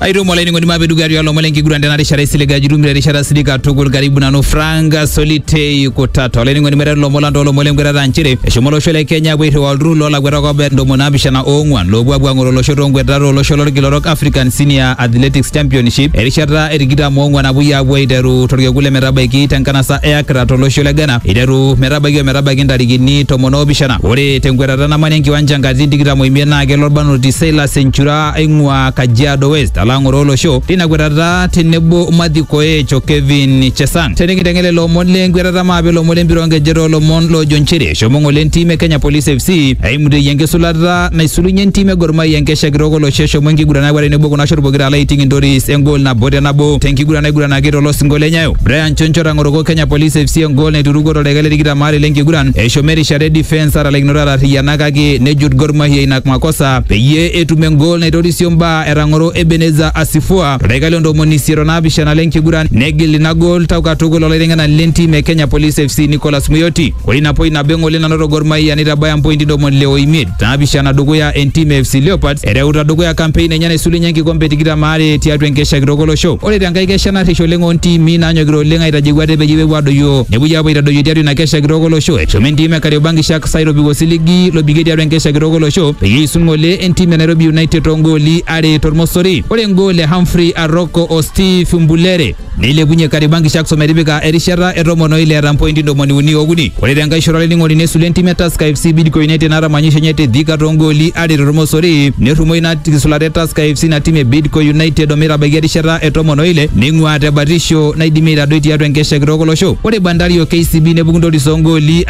aitomo olainining'oni mapedukario olomon lenkiguran tena rishata isiliga jurum te rishata silika tukul karibu nanu franka solitei kutata olainining'oni meteru lomon lang toolomon lenkwetata nchere eshomo olosho le kenya apuo airriwaa olturrur loolakuetak obaya ntomoni naapishana oong'wan loopuo apuo ang'oro olosho toonkwetatat olosho lolkila orok african senior athletics championship erishata e tikitam oong'wan apuoi apuo aiteru torkekun le metabaiki tenkanasa e Accra tolosho le Ghana iteru metabaiki ometabaiki ntarikini tomon oopishana ore tenkwetata namanya enkiwanja nkatitin tikitam oimiet naa kelo orbanoti Silas Enchura aing'ua Kajiado West alo ang'oroo olosho tina kwetata tenebo Matthew Koech o Kevin Chesang. Tenikinteng'en lelo omon le nkwetata maape ilomon le mpira onkejek toolomon loojo nchere eshomo ng'ole entim e Kenya Police FC aimuteyie enkisulata naisulunye entim e Gor Mahia enkesha kitok olosho eshomo enkiguran akwet tenebo kuna shot pokira alo aiting Intoris engol nabo te nabo tenkiguran naiguranaki tolosinko le Nyayo. Brian Choncho otang'oroko Kenya Police FC engol naiturukuo toldaika le tikitam aare lenkiguran eshomo erishata e defence atalaikinoto atarriyiana kake nejut Gor Mahia ina makosa peyie etum engol naitorisio mbaa etang'oro Ebeneza Asifua toldaika le ntomoni isiet o naapishana le nkiguran negil ina gol tau katukul olaiteng'enani le ntim e Kenya Police FC Nicholas Muyoti. Ore ina poi nabo eng'ole nanoto Gor Mahia neitabaya mpointi ntomoni ile o imiet naapishana dukuya entim e FC Leopards ereuta dukuya kampein enye naisulunye enkikombe e tikitam aare tiatua enkesha kitok olosho. Ore te nkae kesha narrish oleng oo ntiimi naanyokita oleng aitajeu ate peyie epuo adoyio nepuoi aapuo aitadoyio tiatua ina kesha kitok olosho eshomo entim e Kariobangi Sharks Sai lobiko siligi lobikie tiatua enkesha kitok olosho peyie eisul ng'ole entim e Nairobi United toongooli are tormosori. Ore engool e Humphrey Aroko o Steve Mbulere neilepunye Kariobangi Sharks ometipika erishata e tomon o ile eeta mpointi ntomoni uni ookuni. Ore tenkae shoto olainining'oni nesul entim e Tusker FC Bidco United naata manyisho enye te Thika toongooli are tormosori nerrumo ina kisulata e Tusker FC ina tim e Bidco United ometabaiki erishata e tomon o ile neing'uaa te batisho naidimi aitadoi tiatua enkesha kitok olosho. Ore Bandari o KCB nepuku ntoris oongooli